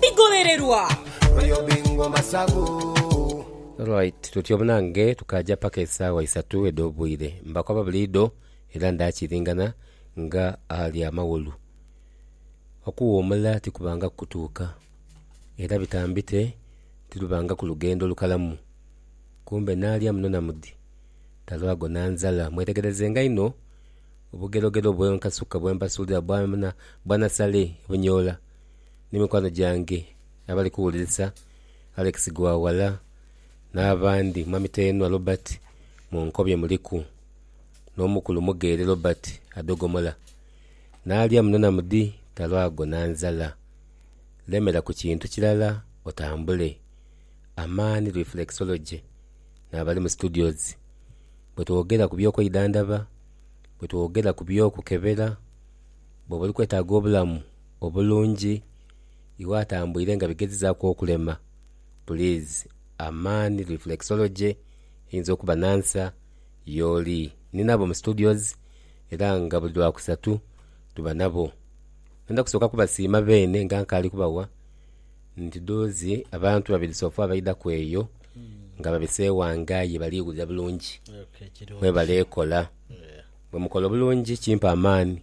bigholererwa. Alright tutyo munange tukaaja paka esaawa isatu edh'obwire. Mbakoba buliidho era ndaakiringana nga ali amaghulu. Okuwuumula tikubangaku kutuuka era bitambite tilubangaku lugendo lukalamu. Kumbe naalya muno na mudi talwago na nzala. Mwetegerezenga inho obugerogero bw'enkasuka bwe mbasuulira bwa nasale ebunyoola. ni mikwano gyange abali kuwulirisa, Alex Gwawala n'abandi, Mwami Teenwa Robert mu nkobyo muliku n'omukulu Mugeere Robert adogomola n'alya muno na mudi talwago na nzala. Lemera ku kintu kirala otambule. Amaani Reflexology n'abali mu studios. Bwe twogera ku by'okweidhandhaba, bwe twogera ku by'okukebera bwoba oli kwetaaga obulamu obulungi iwe atambwire nga bigezizaku okulema please a man reflexology eyinza okuba nansa yooli. Ninabo mu studios era nga buli lwakusatu tuba nabo. Ngenda kusooka kubasiima beene nga nkaali kubawa nti doozi abantu babiri sofa abaidhaku eyo nga babiseewanga aye bali wulira bulungi. Mwebale kola. Bwemukola obulungi kimpa amaani.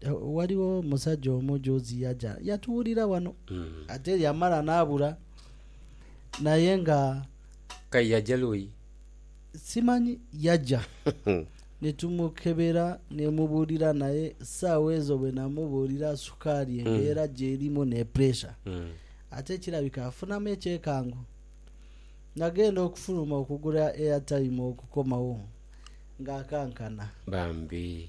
Ghaligho omusaja omu juuzi yaja yatuwulira wano, ate yamala n'abula. Naye nga. K'aye yaja luuyi? Simanyi. Yaja ni tumukebera ni mubuulira naye saawa ezo bwe namubuulira sukaali embeera gy'erimu ne puresha, ate kirabika afunamu ekyekango. Nagenda okufuluma okugula airtime okukomawo ng'akankana. Bambi.